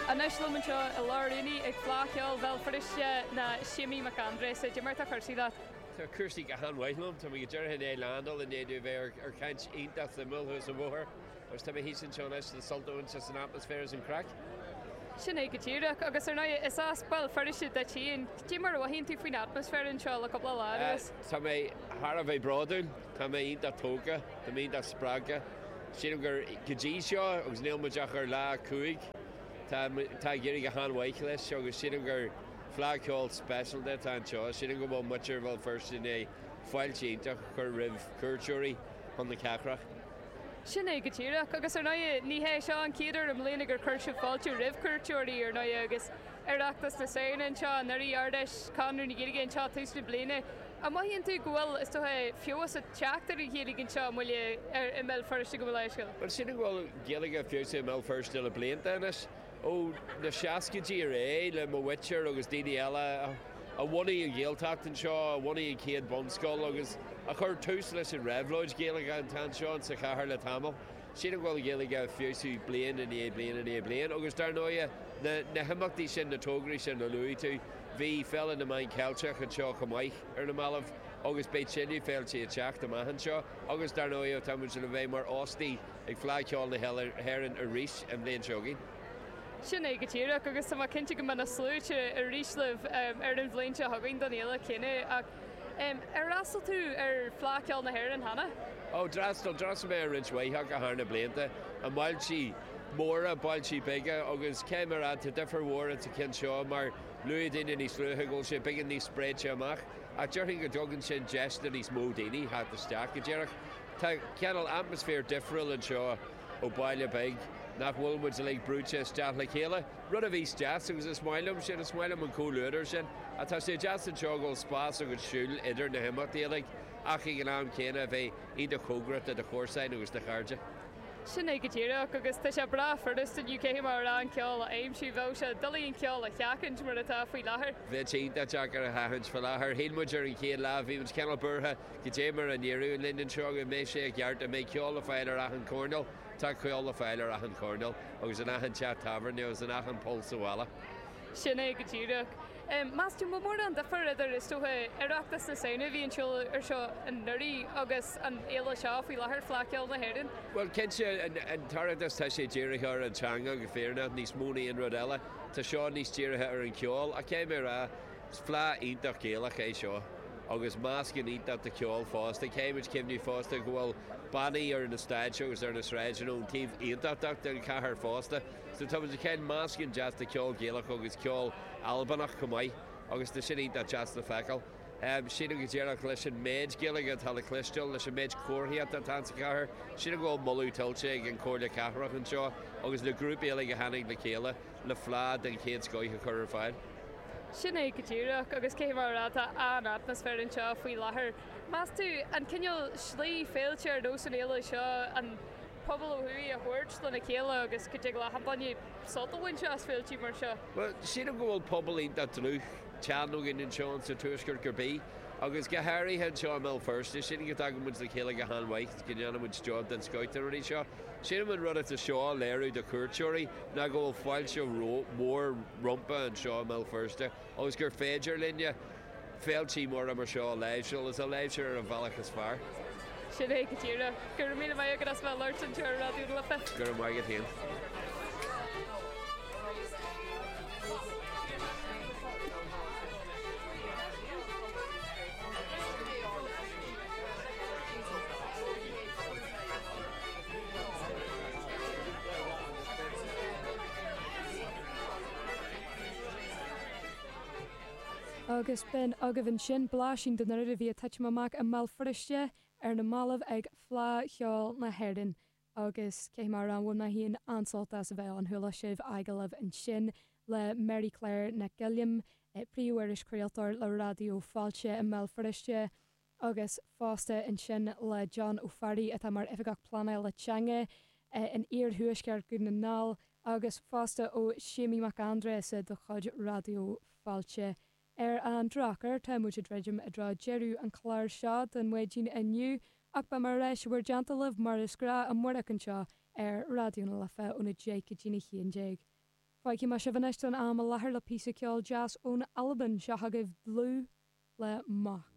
Anois liom anseo i lár an aonaigh ag Fleadh Cheoil Bhéal Feirste ná Séimí Mac Aindreasa. Cad é mar atá cúrsaí leat? Tá cúrsaí go han mhaith liom. Tá mé go díreach i ndiaidh leaindeáil i ndiaidh dom a bheith ar ar chaint iontach suimiúil thuas an bhóthair agus tá mé thíos anseo anois le sult a bhaint as an atmaisféar is an craic. Sin é go díreach, agus ar ndóigh is as Béal Feirste duit féin, cad é mar a mhothaíonn tú faoin atmaisféar anseo le cúpla lá anuas? Tá mé thar a bheith bródúil, tá mé iontach tógtha, tá mé iontach spreagtha. Sílim gur go dtí seo, agus níl muid ach ar lá a cúig, tá muid, tá ag éirí go han-mhaith leis agus sílim gur Fleadh Cheoil speisialta atá anseo. Sílim go bhfuil muintir Bhéal Feirste in ann fáilte iontach a chur roimh chuairteoirí chun na cathrach. Sin é go díreach. Agus ar ndóigh, ní hé seo an chéad uair i mbliana gur chuir sibh fáilte roimh chuairteoirí, ar ndóigh, agus Oireachtas na Samhna anseo anuraidh, Ard-Fheis Chonradh na Gaeilge anseo tús na bliana, An mothaíonn tú go bhfuil, is dócha, feabhas ag teacht ar an Ghaeilge anseo i mBaile ar i mBéal Feirste go Malaeiscigh? Bhuel, sílim go bhfuil Gaeilge feabhsaithe i mBéal Feirste le blianta anois, ó na seascaidí ar aghaidh, le mo mhuintir agus daoine eile a bhunaigh an Ghaeltacht anseo, a bhunaigh an chéad bhunscoil agus a chuir tús leis an réabhlóid Ghaeilge atá anseo insa chathair le tamall. Sílim go bhfuil Gaeilge ag feabhsú bliain i ndiaidh bliana i ndiaidh bliana agus dar ndóighe, na himeachtaí sin, na tograí sin a luaigh tú, bhí Féile na Meán Ceilteach anseo chomh maith ar na mallaibh agus beidh tuilleadh féiltí ag teacht amach anseo agus dar ndóighe, tá muid le bheith mar óstaigh ag Fleadh Cheoil na hÉireann arís an bhliain seo chugainn. Sin é go díreach agus tá mé cinnte go mbeidh na sluaite arís libh ar an bhliain seo chugainn don fhéile chéanna. Ar fhreastal tú ar Fleadh Cheoil na hÉireann cheana? Ó, d'fhreastal. D'fhreastal mé ar roinnt mhaith acu thar na blianta, i mbailtí móra, bailtí beaga agus caithfidh mé a rá tá difir mhór ins an ceann seo mar luaigh daoine níos luaithe go bhfuil sé beagán níos spréite amach ach déarfainn go dtugann sin deis do níos mó daoine theacht isteach go díreach. Tá cineál atmaisféar difriúil anseo. ó baile beag, nach bhfuil muid uilig brúite isteach le chéile, rud a bhíos deas agus is maith liom sin, is maith liom an comhluadar sin, ach tá sé deas anseo go bhfuil spás agat siúl idir na himeachtaí uilig ach ag an am céanna a bheith iontach cóngarach do do chomharsain agus do chairde. Sin é go díreach, agus tá sé breá furasta inniu caithfidh mé a rá an ceol a aimsiú, bheadh sé doiligh an ceol a sheachaint mar atá faoi láthair. Bheadh sé iontach deacair a sheachaint faoi láthair. Shíl muid ar an chéad lá, bhí muid cineál buartha Cad é mar a n-éireoidh linn anseo, go mbeidh sé i gceart, an mbeidh ceol le fáil ar achan choirnéal? Tá ceol le fáil ar achan choirnéal, agus in achan teach tábhairne, agus in achan poll sa bhalla. Sin é go díreach. Meas tú, an bhfuil mórán difir idir, is dócha, Oireachtas na Samhna a bhí ar siúl anuraidh agus an fhéile seo faoi láthair, Fleadh Cheoil na hÉireann? Bhuel, cinnte, an tOireachtas tá sé dírithe ar an teanga go fírinneach níos mó na aon rud eile. Tá seo níos dírithe ar an cheol. Ach caithfidh mé a rá Is fleadh iontach Gaelach é seo, agus meascán iontach de cheol fosta. Caithfidh muid cuimhneamh fosta go bhfuil bannaí ar na stáitse agus ar na sráideanna ón taobh Aontachtach den chathair fosta, so tá muid ag caint ar mheascán deas de cheol Gaelach agus ceol Albanach chomh maith, agus tá sin iontach deas le feiceáil. Sílim go díreach, leis an mhéid Gaeilge atá le cloisteáil, leis an mhéid comharthaíochta atá insa chathair, sílim go bhfuil moladh tuillte ag an Chomhairle Cathrach anseo agus na grúpaí uilig a tháinig le chéile, le fleá den chéad scoith a chur ar fáil. Sin é go díreach, agus cé mar atá an t-atmaisféar anseo faoi láthair, meas tú? An cineál slí é, féilte ar nós na féile seo an pobal ó thuaidh a thabhairt lena chéile agus go dtig le hachan duine sult a bhaint as féiltí mar seo? Bhuel, sílim go bhfuil pobal iontach dlúth, teann againn anseo sa tuaisceart cár bith, agus go háirithe anseo i mBéal Feirste. Sílim go dtagann muid le chéile go han-mhaith, go ndéanann muid job den scoth de na rudaí seo. Sílim an rud atá seo a léiriú do chuairteoirí ná go bhfuil fáilte mhór rompa anseo i mBéal Feirste agus gur féidir linne féiltí móra mar seo a láimhseáil is a láimhseáil ar an bhealach is fearr. Sin é go díreach. Go raibh míle maith agat as bheith ag labhairt linn inniu ar Raidió na Life. Go raibh maith agat féin. Agus b'in agaibh ansin blaisín den mhéid a bhí ag titim amach i mBéal Feirste ar na mallaibh ag Fleá Cheoil na hÉireann agus cé go raibh mé féin an-sásta as a bheith ann, chuala sibh agallamh ansin le Mary Claire Nic Giolláin, iriseoir is craoltóir le Raidió Fáilte i mBéal Feirste agus fosta ansin le John Ó Fearraigh atá mar Oifigeach Pleanála Teanga in iarthuaisceart Dhún na nGall agus fosta ó Séimí Mac Aindreasa de chuid Raidió Fáilte. Ar an drochuair tá muid ag druidim i dtreo deireadh an chláir seo don mhaidin inniu ach beidh níos mó le plé againn libh mar is gnáth amárach anseo ar Raidió na Life óna deich go dtí a haon déag. Fágfaidh mé sibh anois don am i láthair le píosa ceoil deas ón Albain, seo agaibh Dlù le Moch.